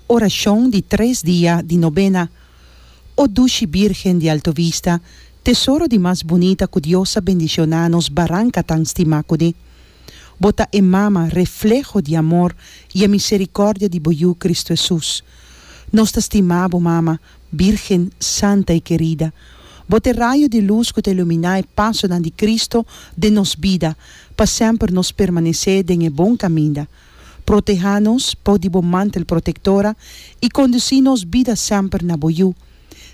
Orashon di tres dia di nobena O dushi Birgen di Alto Vista, tesoro di mas bunita ku Dios a bendishoná nos baranka tan stimá kuné. Bo ta e Mama, refleho di amor i e miserikòrdia di bo Yu Kristu Hesus. Nos ta stimá bo Mama, Birgen santa i kerida. Bo ta e rayo di lus ku ta iluminá e pasonan di Kristu den nos bida, pa semper nos permanesé den e bon kaminda. Proteha nos por di bo mantel protektora i kondusí nos bida semper na bo yu.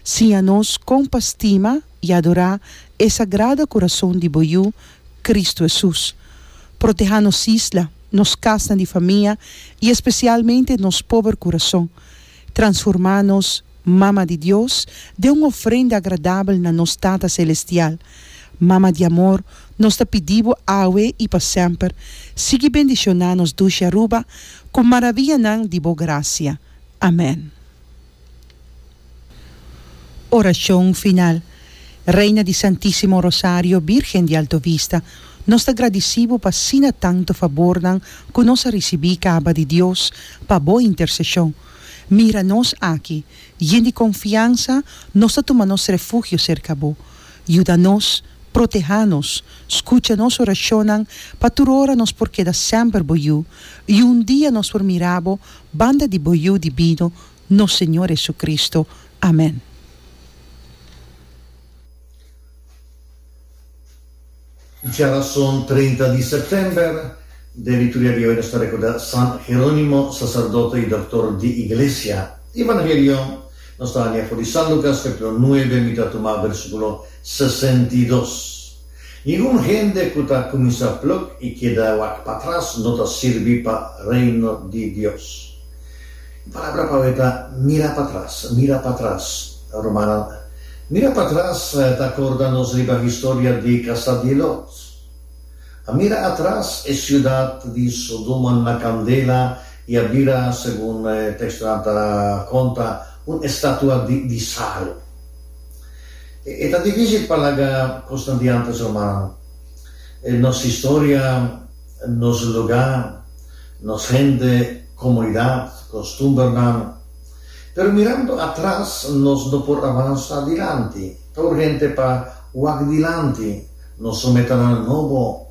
Siña nos kon pa stima i adorá e sagrado kurason di bo Yu, Kristu Hesus. Proteha nos isla, nos kasnan di famia i espesialmente nos pober kurason. Transformá nos Mama di Dios den un ofrenda agradabel na nos Tata Selestial. Mama di amor, nos ta pidí bo awe i pa semper, sigui bendishoná nos dushi Aruba ku maravianan di bo grasia. Amèn. Orashon final. Reina di Santísimo Rosario, Bírgen di Alto Vista. Nos ta gradisí bo pa asina tantu fabornan ku nos a risibí kaba di Dios pa bo interseshon. Mira nos aki, yen di konfiansa, nos ta tuma nos refugio serka bo. Yuda nos, protehá nos, skucha nos orashonnan pa tur ora nos por keda semper bo yu, i un dia nos por mira bo banda di bo Yu Dibino, nos Señor JesuCristo. Amén. Dje rason treinta di sèptèmber den di tur dia di oi nos ta rekordá San Jerónimo, saserdote i doktor di Iglesia. Evangelio, Nos ta hania for di San Lukas kapítulo nuebe, mi ta tuma versíkulo sesenta i dos. Ningun hende ku ta kuminsá pluk i keda wak patras no ta sirbi pa Reino di Dios. Barbara pabia ta mira patras, mira patras, Romana. Mira patras ta acorda nos riba historia di casa di Lot. A mira atras e ciudad di Sodoma na candela y a bira, segun e textonan ta conta, un estatua di di sal. E ta dificil pa laga cosnan di antes, Romana. Nos historia, nos lugar. Nos hende, comunidad, costumbernan. Pero mirando atras nos no por avansa dilanti. Ta urgente pa wak dilanti nos su metanan nobo.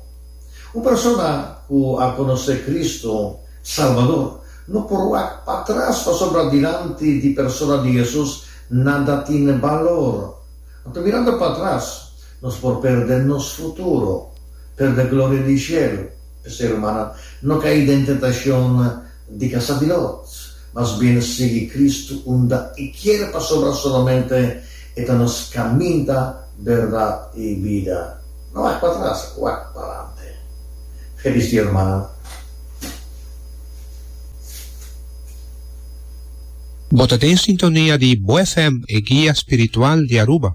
Un persona cu a conoce Cristo, Salvador, no por wak patras pasobra dilanti di persona di Jesus nada tin balor. Anto mirando patras nos por perde nos futuro, perde gloria di cielo. E ser humano no kai den tentashon di kasa di Lot, mas bien e sigui Kristu unda e kier pasobra solamente e ta nos kaminda, berdad i bida. No wak pa tras, wak parante. Felis dia hermano. Bo ta den sintonia di Bo FM, e guia spiritual di Aruba.